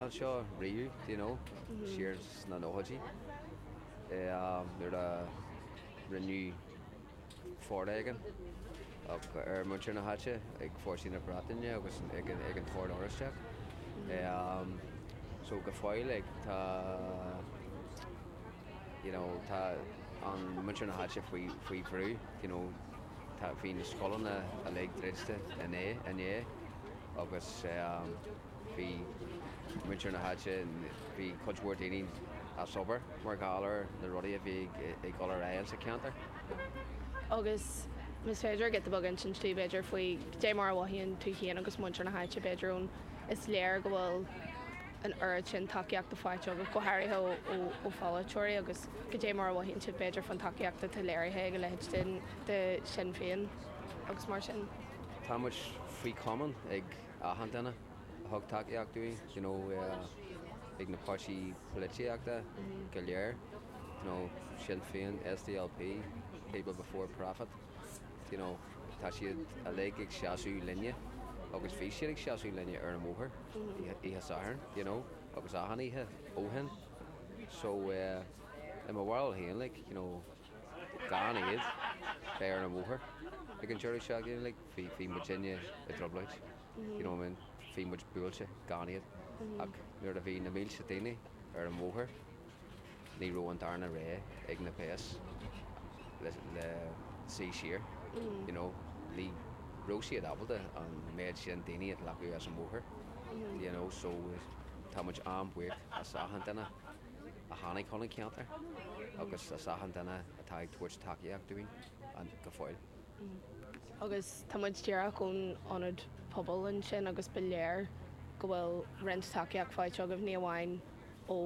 anseo riamh, do you know, siar sna nóchaidí, nuair a rinneadh foréigean ar mhuintir na háite ag fórsaí na Breataine agus ag an tOrd Oraisteach. So go fóill like tá, you know, tá muintir na háite faoi, faoi bhrú, do you know, tá, bhí na scoileanna uilig druidte inné, inné agus. Bhí muintir na háite, bhí cuid mhór daoine as obair mar gheall ar na rudaí a bhí ag dul ar aghaidh sa cheantar. Agus más féidir leat rud beag a insint dúinn, b'fhéidir, faoi chdé mar a mhothaíonn tú féin agus muintir na háite, b'fhéidir, ón, is léir go bhfuil an oiread sin tacaíochta faighte agat, go háirithe ó pholaiteoirí, agus cdé mar a mhothaíonn tú, b'fhéidir, fán tacaíocht atá léirithe ag a leithéid de Shinn Féin agus mar sin. Tá muid faoi chomaoin ag. achan duine a thug tacaíocht dúinn, you know, ag na páirtithe polaitíochta go léir, you know, Sinn Féin, SDLP, People Before Profit, you know, tá siad uilig ag seasamh linne agus bhí siad ag seasamh linne ar an mbóthar oíche Sathairn, you know, agus achan oíche ó shin. So, eh, i mo bharúil féin, like, you know, Gan iad a bheith ar an bhóthar ag an deireadh seachtaine like, bhí, bhí muidinne i dtrioblóid. You know what I mean? Bhí muid buailte gan iad. Ach nuair a bhí na mílte daoine ar an bhóthar, ní raibh an darna rogha ag na péas ach suí siar. You know, ní raibh siad ábalta an méid sin daoine a ghlacadh as an bhóthar. You know, so tá muid an-bhuíoch as achan duine. a tháinig chun an cheantair agus as achan duine atá ag tabhairt tacaíocht dúinn go fóill. Agus tá muid díreach ón ionad pobail ansin agus ba léir go bhfuil roinnt tacaíocht faighte agaibh, ní amháin ó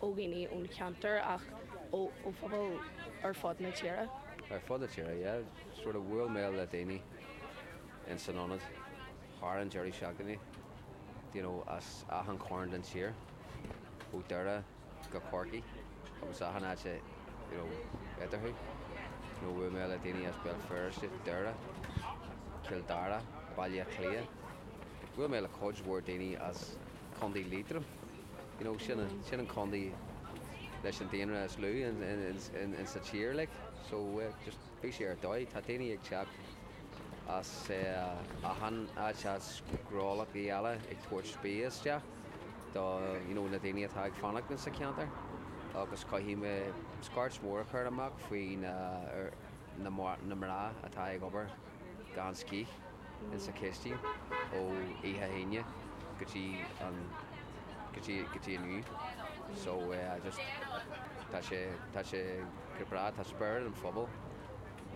dhaoine ón cheantar ach ó phobal ar fud na tíre. Ar fud na tíre, yeah. So bhuail mé le daoine insan ionad. thar an deireadh seachtaine, do you know, as achan chearn den tír, ó Dhoire go Corcaigh agus achan áit i, you know, eatarthu, you know, bhuail mé le daoine as Béal Feirste, Doire, Cill Dara, Baile Átha Cliath, bhuail mé le cuid mhór daoine as Contae Liatroim, you know, sin, sin an contae leis an daonra is lú in, in, in, in sa tír, like, so, uh, just. Bhí sé ar dóigh. Tá daoine ag teacht as achan áit, agus gnólachtaí eile ag tabhairt bia isteach do you know na daoine atá ag fanacht insa cheantar agus caithfidh mé scairt mhór a chur amach faoi na er na na mná atá ag obair gan scíth insa chistín ó oíche Aoine go dtí an go dtí go dtí inniu so eh just tá sé tá sé go breá. Tá spiorad an phobail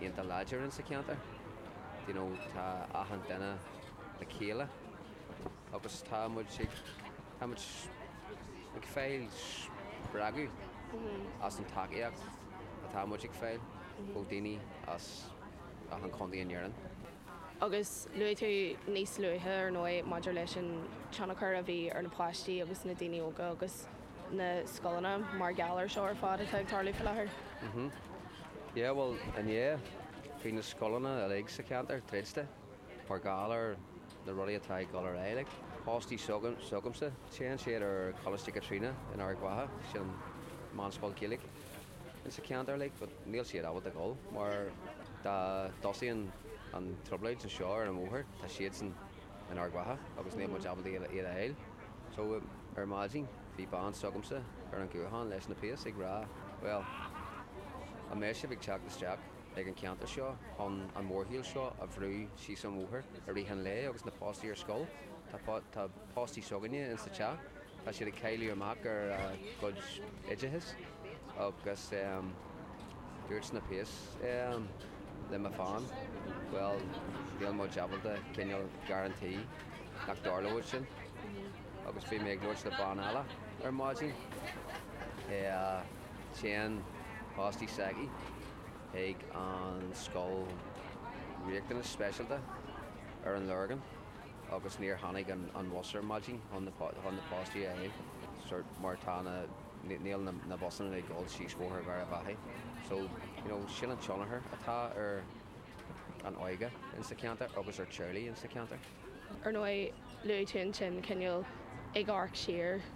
iontach láidir insa cheantar, d'you know, tá achan duine le chéile agus tá muid ag, tá muid ag fáil spreagadh as an tacaíocht atá muid ag fáil ó daoine as achan chontae in Éirinn. Agus luaigh tú níos luaithe ar ndóigh maidir leis an tionchar a bhí ar na páistí agus na daoine óga agus. na scoileanna mar gheall ar seo ar fad atá ag tarlú faoi láthair. Mhm. Yeah bhuel inné bhí na scoileanna uilig sa cheantar druidte mar gheall ar na rudaí atá ag dul ar aghaidh like páistí s'agamsa téann siad ar Choláiste Chaitríona in Ard Mhacha sin meánscoil Ghaeilge insa cheantar like but níl siad ábalta dhul mar dá dtosaíonn an trioblóid anseo ar an mbóthar tá siadsan in Ard Mhacha agus níl muid mm. ábalta iad a fháil. So, ar maidin, bhí bean s'agamsa ar an ghuthán leis na péas ag rá, Bhuel, an mbeidh sibh ag teacht isteach ag an gceantar seo chun an mórshiúl seo a bhrú síos an bhóthair i rith an lae agus na páistí ar scoil? Tá, tá páistí s'againne in sa teach, tá siad ag cailliúint amach ar a gcuid oideachais agus ehm, Dúirt na péas ehm le mo bhean, bhuel níl muid ábalta cineál guarantee nach dtarlóidh sin agus bhí mé ag labhairt le bean eile ar maidin eh téann páistí s'aici chuig an scoil riachtanas speisialta ar an Lorgain agus níor tháinig an bhus ar maidin chun na chun na páistí a sort mar tá na níl na busanna ag dul síos bóthar Gharbhachaidh so you know sin an tionchar atá ar an óige in sa cheantar agus ar teaghlaigh in sa cheantar. Ar ndóigh luaigh tú ansin cineál ag amharc siar go.